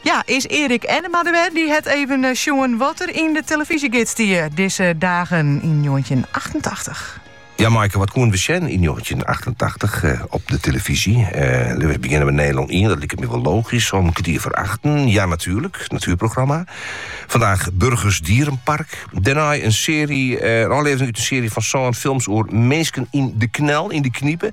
Ja, is Erik Ennema der wer? Dy hat even sjoen wat der yn de tillefyzje gids stie dizze dagen yn njoggentjinhûndertachtentachtich. Ja, Maaike, wat koenen we sjen yn njoggentjinhûndertachtentachtich op de tillefyzje? Lit ús begjinne we Nederland ien, dat liket my wol logysk, om kertier foar achten, Ja Natuurlijk, it natuerprogramma. Vandaag Burgers Dierenpark. Dêrnei in searje, in ôflevering út in searje fan sân films oer minsken yn de knel, yn de knipe.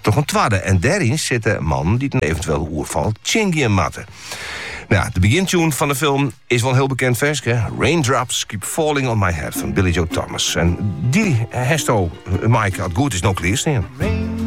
Troch in twadde en dêryn sitte mannen dy't in eventuele oerfal tsjingean moatte. Nou ja, de begintune fan de film is wel in heel bekend ferske. Raindrops keep falling on my head fan Billy Joe Thomas. En die hesto, Maaike, as it goed is no klearstean.